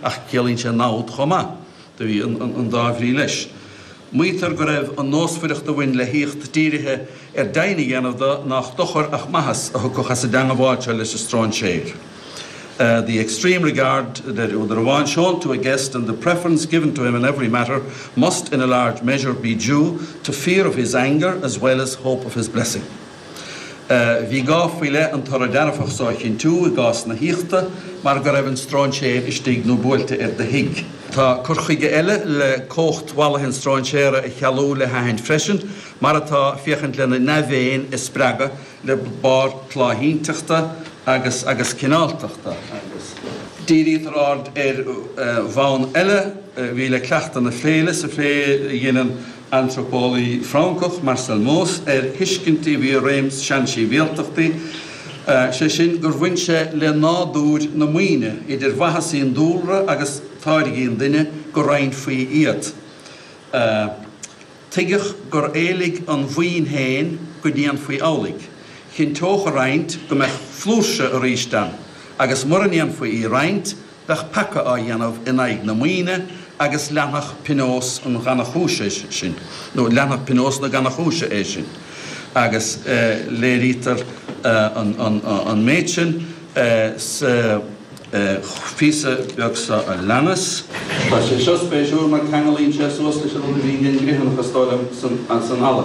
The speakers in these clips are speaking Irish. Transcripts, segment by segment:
Ach ciallaíonn sé namhad chomh maith, do bhí an dá bhrí leis. Maítear go raibh an nósmhaireacht a bhain le haíocht dírithe ar deimhin a dhéanamh de nách dochar ach maitheas a thiocfadh as an dteangabháil seo leis an stróinséir, 'The extreme regard a deir údar amháin shown to a guest and the preference given to him in every matter must in a large measure be due to fear of his anger as well as hope of his blessing'. Bhí gá faoi leith an toradh dearfach so a chinntiú i gcás na haíochta mar go raibh an stróinséir istigh nó buailte ar do thigh. Tá cur chuige eile le cumhacht mhallaithe an stróinséara a chealú le haithint freisin, mar atá, féachaint lena ndea-mhéin a spreagadh le barr tláithínteachta agus agus cineáltachta, agus. Dírítear aird ar bhonn eile a bhí le cleachtadh na féile sa phlé a dheineann antraipeolaí Francach Marcel Mauss ar thuiscint a bhí i réim i seansibhialtachtaí, sé sin gur bhain sé le nádúir na maoine, idir mhaitheasaí an dúlra agus táirgí an duine, go roinnfí iad. Tuigeadh gur éiligh an mhaoin féin go ndéanfaí amhlaidh. Chinnteodh a roinnt go mbeadh flúirse arís ann, agus mura ndéanfaí í a roinnt, bheadh peaca á dhéanamh in aghaidh na maoine agus leanfadh pionós an ghannachúis é sin, nó leanfadh pionós na gannachúise é sin, agus léirítear an méid sin sa phíosa beag seo a leanas. Tá sé seo spéisiúil mar ceanglaíonn sé suas leis an rud a bhí ag an gCriomhthanach is dóigh liom san eala.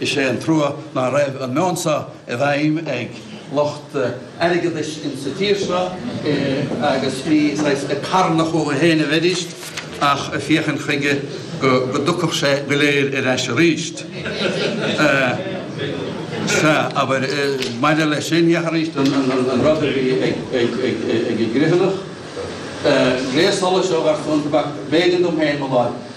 Is é an trua ná raibh an meon seo i bhfeidhm ag lucht airgeadais insa tír seo agus ní saghas carnadh chucu féin a bheidís ach ag féachaint chuige go dtiocfadh sé go léir ar ais aríst. Sea, abair, maidir leis sin, féach aríst an rud a bhí ag an gCriomhthanach, gléas solais ó gharchlann tobac, b'éigean dom féin mo láimh.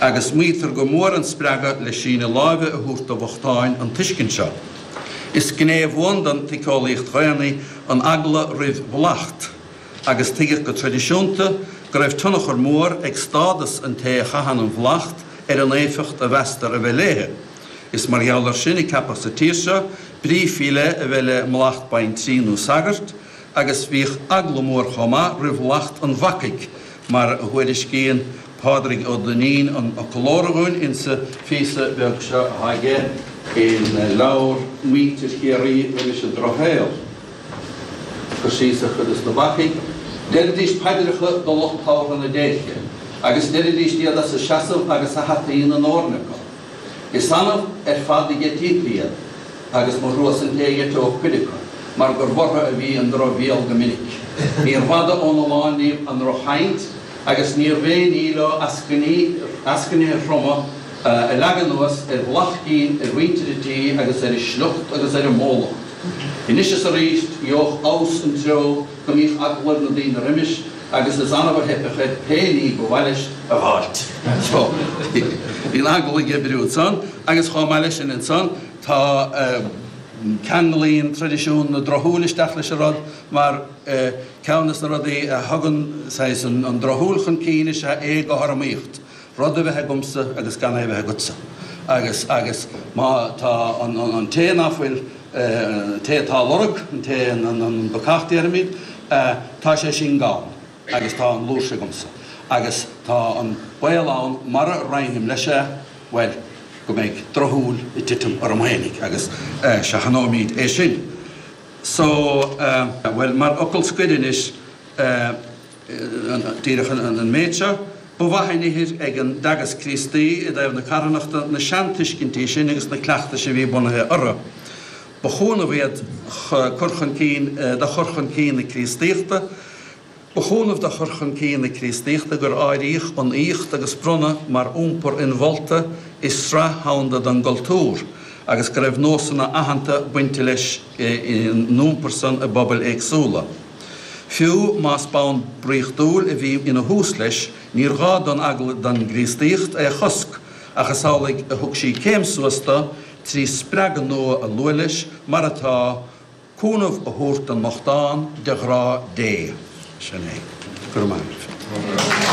Agus maítear gur mhór an spreagadh le síneadh láimhe a thabhairt do bhochtáin an tuiscint seo. Is gné bhuan den tsíceolaíocht dhaonna an eagla roimh mhallacht, agus tuigeadh go traidisiúnta go raibh tionchar mór ag stádas an té a chaitheann an mhallacht ar an éifeacht a mheastar a bheith léi. Is mar gheall air sin a ceapadh sa tír seo brí faoi leith a bheith le mallacht baintrí nó sagairt agus bhíodh eagla mór chomh maith roimh mhallacht an bhacaigh, mar a thuairiscíonn Pádraig Ó Duinnín an fhoclóra dhúinn insa phíosa beag seo aige i leabhar Muintir Chiarraí roimis an Drochshaol. Cur síos ar chuid de na bacaigh, Deiridís paidreacha do lucht tabhartha na déirce, agus deiridís iad as a seasamh agus a hataí ina ndóirne acu. Is annamh ar fad a d'eití iad. agus mo thrua-sa an té a dh'eiteodh cuid acu mar gur orthu a bhí an drochbhéal go minic. Níorbh fhada óna lán díobh an drochchaint agus níorbh aon ní leo eascainí, eascainithe throma, a leagadh anuas ar phlaitín, ar mhuintir an tí agus ar a sliocht agus ar a mbólacht. Anois is arís gheobhadh amhas an treo go mbíodh eagla ar na daoine roimis agus is annamh a theipfeadh air pé ní ba mhaith leis a dh'fháilt. Bhí an eagla ag oibriú ansan agus chomh maith le sin ansan, Tá. Ceanglaíonn traidisiún na drochshúil isteach leis an rud, mar ceann de na rudaí a thugann saghas an drochshúil chun cinn is ea éagothromaíocht, rud a bheith agamsa agus gan é a bheith agatsa. Agus agus má tá an té ná fuil, an té atá á lorg, an té, an bacach déarfaimid, tá sé sin gann agus tá an fhlúirse agamsa. Agus tá an baol ann, mura roinnim leis é, Baol go mbeidh drochshúil ag titim orm fhéinig, agus seachnóimid é sin. So, bhuel, mar fhocal scoir anois, díreach an méid seo, ba mhaith an ithir ag an dTeagasc Críostaí i dtaobh na carthanachta, na seantuiscintí sin agus na cleachtais a bhí bunaithe orthu, ba chúnamh iad chur chun cinn, do chur chun cinn na Críostaíochta. Ba chúnamh do chur chun cinn na Críostaíochta gur áiríodh an aíocht agus bronnadh mar iompar inmholta i sraith dhomhanda den gcultúr, agus go raibh nósanna aitheanta bainte leis an iompar san i bpobail éagsúla. Fiú más bonn draíochtúil a bhí ina thús leis, níor ghá don eagla don gCríostaíocht é a chosc, ach is amhlaidh a thug sí céim suas dó, trí spreagadh nua a lua leis, mar atá, cúnamh a thabhairt don mbochtán de ghrá Dé. Sin é. Go raibh maith agat.